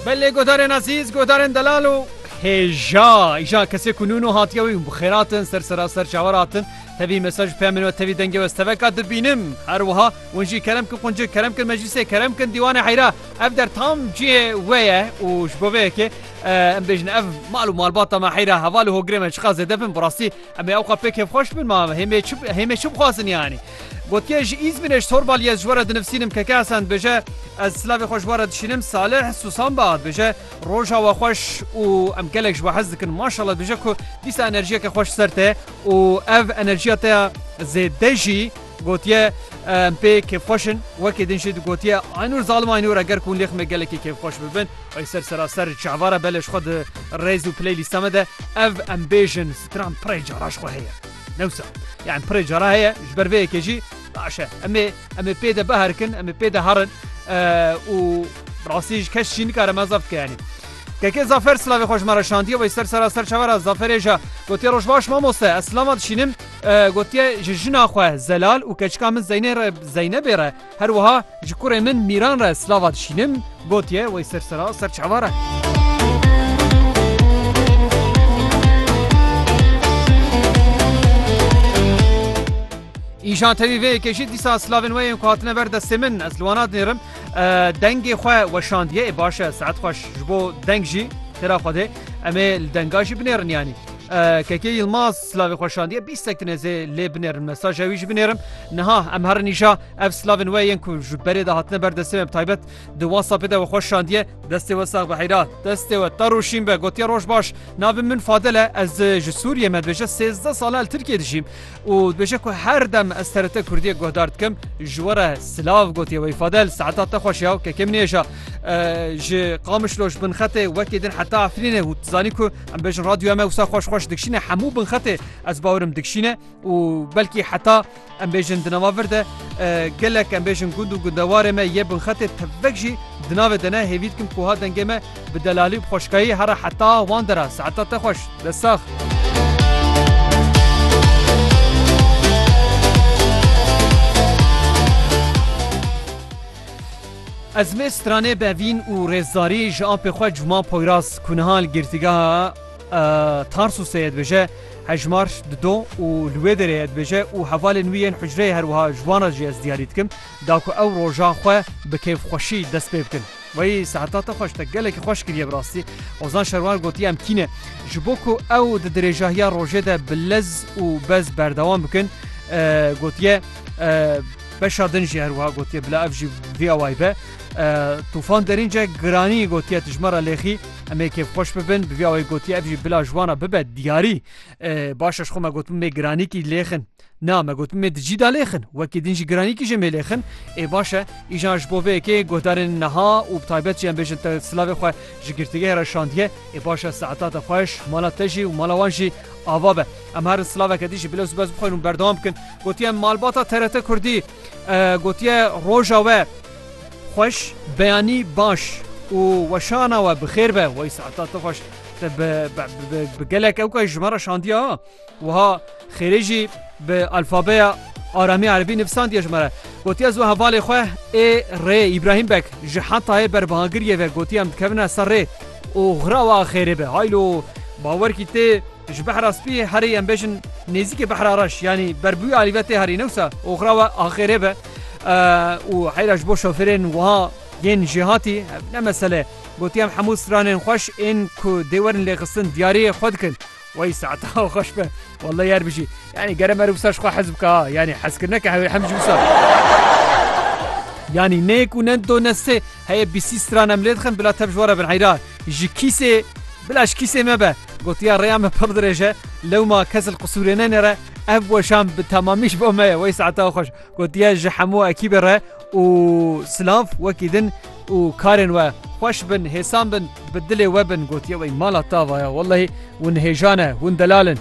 Belê guhdarên ezîz, guhdarên delal û hêja îja kesê ku nûno hatiye wî bi xêratin ser seraser çawer hatin tevî mesaj pê min we tevî dengê we steveka dibînim her wiha wan jî kerem kin quncik kerem kin meclîsê kerem kin dîwanê heyra ev der tam cihê we ye û ji bo vê yekê em bêjin ev mal û malbata me heyra heval û hogrê me çiqa zêde bin bi rastî em ê ewqa pê kêfxweş bin ma hêmê hêmê çi bixwazin yanî Gotiye ji Îzmîrê ji Torbaliyê ez ji we re dinivsînim Keke Hesen dibêje Ez silavê xwe ji we re dişînim Salih Susan Baha dibêje Roja we xweş û em gelek ji we hez dikin Maşallah dibêje ku dîsa enerjiyeke xweş ser te û ev enerjiya te ya zêde jî gotiye em pê kêfxweş in Wekî din jî digotiye Aynûr zalim Aynûr e ger ku hûn lê ximê gelekî kêfxweş bibin Ay ser seraser çavara bele ji xwe di rêz û piley lîsta me de ev em bêjin stran pirê cara ji xwe heye. Newsa. Yan pirê cara heye ji ber vê yekê jî baş e. Em ê em ê pê de biherikin, em ê pê de herin û rastî ji kes jî nikare me zaf dike yanî. Keke Zafer silavê xwe ji me re şandiye wê ser sera ser çavera Zaferê je gotiye roj baş mamoste ez silama dişînim gotiye ji jina xwe zelal û keçika min zeynê re zeynebê re Her wiha ji kurê min Mîran re silava dişînim, gotiye wey ser sera ser çava re. Îşan tevî vê yekê jî dîsa silavên we yên ku hatine ber destê min ez li wan nadinêrim dengê xwe weşandiye ê baş e saet xweş ji bo deng jî têra xwedê em ê li denga jî binêrin yanî kekê Yilmaz Silavê xwe şandiye bîstek din ez ê lê binêrim mesaja wî jî binêrim. Niha em herin îşa ev silavên we yên ku ji berê de hatine ber destê me bi taybet di WhatsAppê de we xwe şandiye. Destê we sax be heyra. Destê we ter û şîn be gotiye roj baş. Navê min Fadil e ez ji Sûriyê me dibêje sêzdeh sal e li Tirkiyê dijîm û dibêje ku her dem ez TRT Kurdiyê guhdar dikim ji we re silav gotiye wey Fadil saeta te xweş ya kekê min êja ji Qamişlo ji bin xetê wekê din heta Efrînê û tu zanî ku Em bêjin radyoya me wisa xweş xweş dikşîne hemû bin xetê ez bawerim dikşîne û belkî heta em bêjin di nava vir de gelek em bêjin gund û gundewarê me yê bin xetê tevek jî di navê de ne hêvî dikim ku ha dengê me bi delalî û xweşkayî hera heta wan de ra saeta te xweş de sax. Ezmê stranê Bevîn û Rêzdarî ji apê xwe Cuma Poyraz ku niha li girtîgeha Tarsûsê ye dibêje hejmar di do û li wê derê ye dibêje û hevalên wî yên hucreyê her wiha ji wan re jî ez diyarî dikim da ku ew roja xwe bi kêfxweşî dest pê bikin. Wey seheta te xweş te gelekî xweş kiriye bi rastî. Ozan Şerwar gotiye em tî ne. Ji bo ku ew di dirêjahiya rojê de bi lez û bez berdewam bikin gotiye, Beşa din jî her wiha gotiye bila ev jî vê awayî be. Tûfan Derînce giranî gotiye tijmara lêxî em ê kêfxweş bibin bi vê awayî gotiye ev jî bila ji wan re bibe diyarî. Baş e ji xwe me gotin mê giranîkî lêxin. Na me gotin mê di cî de lêxin wekî din jî giranîkî jê mê lêxin. Ê baş e îjan ji bo vê yekê guhdarên niha û bi taybet jî em bêjin te silavê xwe ji girtîgehê re şandiye. Ê baş e saeta te xweş mala te jî û mala wan jî ava be. Em herin silaveke dî jî bilez û bez bixwin û berdewam bikin. Gotiye malbata TRT Kurdî gotiye roja we xweş, beyanî baş û weşana we bi xêr be. Wey saeta tu xweş te bi gelek ewkayî ji me re şandiye ha. Wiha xêrê jî bi alfabeya aramî erebî nivîsandiye ji me re. Gotiye ez we hevalê xwe ê rê Îbrahîm Beg ji hetayê berbihagiriyê ve gotiye em dikevine ser rê û xira we xêrê be. Haylo bawer kî tê Ji behra spî herî em bêjin nêzîkê behra reş yanî berbûyê alî ve tê herî ne wisa oxira we axêrê be û heyra ji bo şofêrên wiha yên jêhatî ev ne mesele gotiye em hemû stranên xweş ên ku dê werin lêxistin diyariyê xwe dikin Wey saeta xweş be welleh yer bijî yanî gere me re wisa ji xwe hez bike ha yanî hezkirineke hewê hem ji wisa yanî ne yek û ne do ne sê heye bîsî stran em lê dixin bila tev ji we re bin heyra Ji kîsê Bila ji kîsê me be. Gotiya rêya me pir dirêj e. Lewma kes li qisûrê nenêre. Ev weşan bi temamî ji bo me ye. Wey saeta xweş. Gotiye ji hemû ekîbê re û silav wekî din û karên we xweş bin, hêsan bin, bi dilê we bin. Gotiye wey mala tava ya. Wellehî hûn hêjan e, hûn delal in.